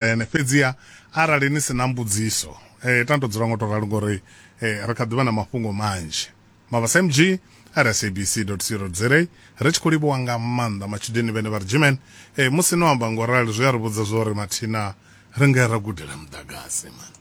ene fhedziha arali ni si na mbudziso eh, tando dzula ngo tou ralo ngori eh, ri kha ḓivha na mafhungo manzhi mavhasa mg rsabc co za ri tshi khou livhuwa nga maanḓa matshudeni vhene vha ri jimen eh, musi no amba ngo rali zwi a ri vhudza zwo ri mathina ri nga ra gudela muḓagasi man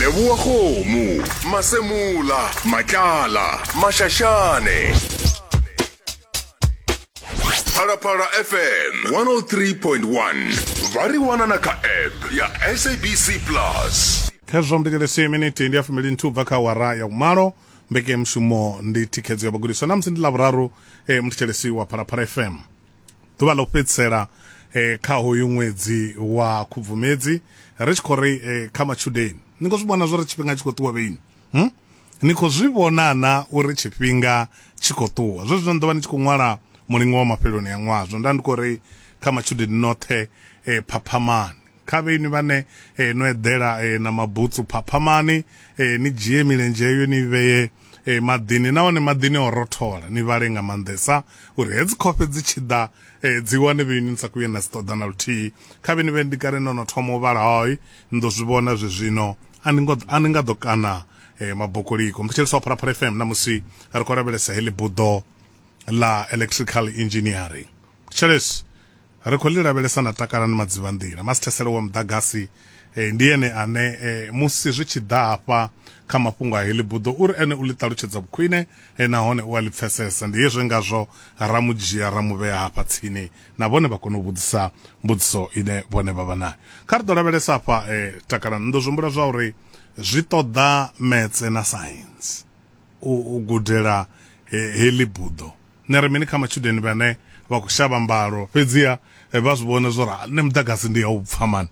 leboa kgomo masemola matlala mašašane phalaphala fm 103.1 vha ri wana na kha app ya sabc plus khezwo mbitelesi miniti ndi ya fumili nthu bva kha wara ya umalo mbekemushumo ndi thikhedzo ya vhagudiswa namusi ndi lavhuraru e eh, muthetshelesi wa phalaphala fm ḓuvha ḽo fhedzisela eh, kha hoyu ṅwedzi wa khubvumedzi ri tshi khou ri eh, kha matshudeni ni khou zwi vhona zwo ri tshifhinga tshi khou ṱuwa vheini hmm? ni khou zwi vhona na uri tshifhinga tshi khou ṱuwa zwe zwino ni ḓo vha ni tshi khou ṅwala mulingo wa mafheloni ya ṅwaha zwo nda ndi khou ri kha matshudeni noṱhe eh, phaphamani kha vhe inwi vhane eh, no eḓela eh, na mabutsu phaphamani eh, ni dzhie milenzhe eyo ni vheye eh, maḓini nahone maḓini o rothola ni vhale nga maanḓesa uri hedzi khofhe dzi tshi ḓa eh, dzi wane vhe inwi ni sa kuye na dzi ṱoḓa na luthihi kha vhe ni vhe ndi kale no no thoma u vhala hoi ni ḓo zwi vhona zwe zwino a ni ngo- a ni nga ḓo kana eh, mabokoliko mthetshelesi wa pharapara fm namusi ri khou lavhelesa heḽi buḓo la electrical engineering tshelesi Ri khou ḽi lavhelesa na Takalani Madzivhanḓila. Masithesele wa muḓagasi ndi ene ane musi zwi tshi ḓa hafha kha mafhungo a heḽi buḓo u ri ene u ḽi ṱalutshedza vhukhwine nahone u a ḽi pfesesa. Ndi hezwi ngazwo ra mu dzhia ra mu vhea hafha tsini na vhone vha kone u vhudzisa mbudziso ine vhone vha vha nayo. Kha ri ḓo lavhelesa hafha Takalani, ni ḓo zwi humbula zwa uri zwi ṱoḓa Metse na Saintsi u gudela heḽi buḓo. Ni ri mini kha matshudeni vhane vha khou shavha mbalo fhedziha vha zwi vhona zwo ri nṋe muḓagasi ndi ya u pfa mani?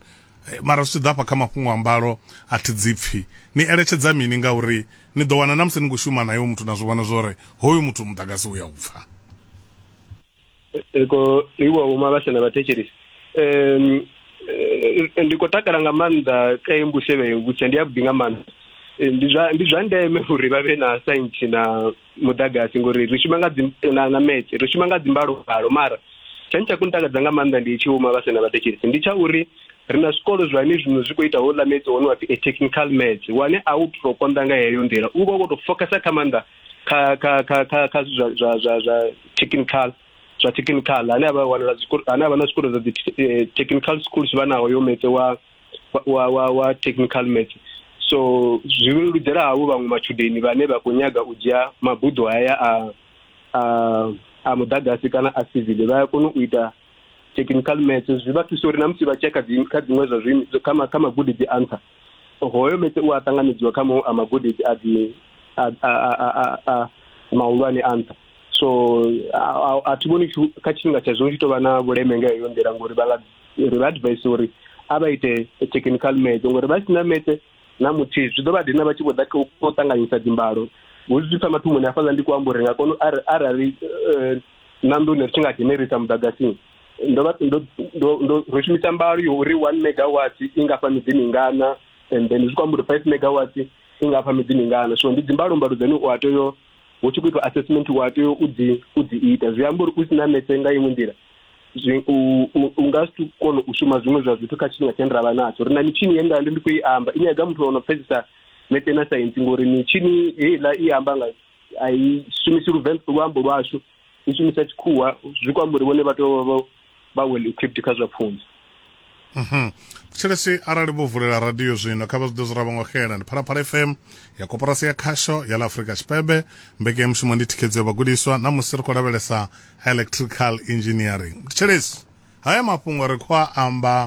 Mara zwi tshi ḓa hafha kha mafhungo a mbalo a thi dzi pfi. Ni eletshedza mini ngauri ni ḓo wana na musi ni khou shuma nae hoyu muthu na zwi vhona zwo ri hoyu muthu muḓagasi u ya u pfa. Eko iwa vho mavhasha na vhathetshelesi ndi khou takala nga maanḓa kha iyi mbusevhe vhutshia ndi ya vhuḓi nga maanḓa ndi zwa ndi zwa ndeme uri vha vhe na saintsi na muḓagasi ngori ri shuma nga dzi na, na metse ri shuma nga dzimbalobalo mara tshani tsha kuntakadza nga maanḓa ndi tshi uma vha sena vhathetshelesi ndi tsha uri ri na zwikolo zwa ne zwino zwi khou ita houḽa metse one wa pfi a technical metse wane a u to konḓa nga heyo nḓila u vha u khou to focasa kha maanḓa kha kha kha kha kha zwa zwa zwa zwa technical zwa technical ane avha wanala zwikolo ane avha na zwikolo zwa dzi eh, technical schools vha naho yo metse wa wa wa wa technical maths so zwi leludzela havho vhaṅwe matshudeni vhane vha khou nyaga u dzhia mabuḓo haya a a a muḓagasi kana a civil vha ya kona u ita technical maths zwi vha thusa uri na musi vha tshia kha kha dziṅwe zwa zwi kha kha magudedzi a nṱha hoyo metse u a ṱanganedziwa kha maṅwe a magudedzi a dzi a a a mahulwane a nṱha so a thi vhoni kha tshifhinga tsha zwino tshi tou vha na vhuleme nga heyo nḓila ngori vha nga ri vha advise uri a vha ite technical math ngori vha si na math na muthihi zwi ḓo vha dina vha tshi vho ḓa kha u ṱanganyisa dzimbalo hu zwi pfa mathomoni hafhaḽa ndi kho amba uri nga kono arali eh, na nḓuni ri tshi nga dzhenerisa muḓagasini ndo vha ndo ndo ro shumisa mbalo yo uri 1 megawatt i nga fa miḓi mingana and then zwi kho amba uri 5 megawatt i nga fa miḓi mingana so ndi dzimbalo mbalo dzane u a tea hu tshi khou itwa assessment u a tea u dzi u dzi ita zwi amba uri u si na metse nga iṅwe nḓila zwi u nga si kone u shuma zwiṅwe zwa zwithu kha tshifhinga tshine ra vha natsho ri na mitshini ye nda ndi ndi khou i amba i nyaga muthu ono pfesesa mete na saintsi ngori mitshini heiḽa i amba nga a i shumisi luvenḓa luambo lwashu i shumisa tshikhuwa zwi kwamba uri vhone vha tea vha well equipped kha zwa pfunzo Mhm. thetshelesi arali vho vulela radio zwino kha vha zwi ḓe zwo ravha ngo xela ndi phalaphala fm ya koporasi ya khasho ya la afurika tshipembe mbekanyamushumo ndi thikhedzo ya vhagudiswa na musi ri khou lavhelesa electrical engineering thetshelesi haya mafhungo ri khou a amba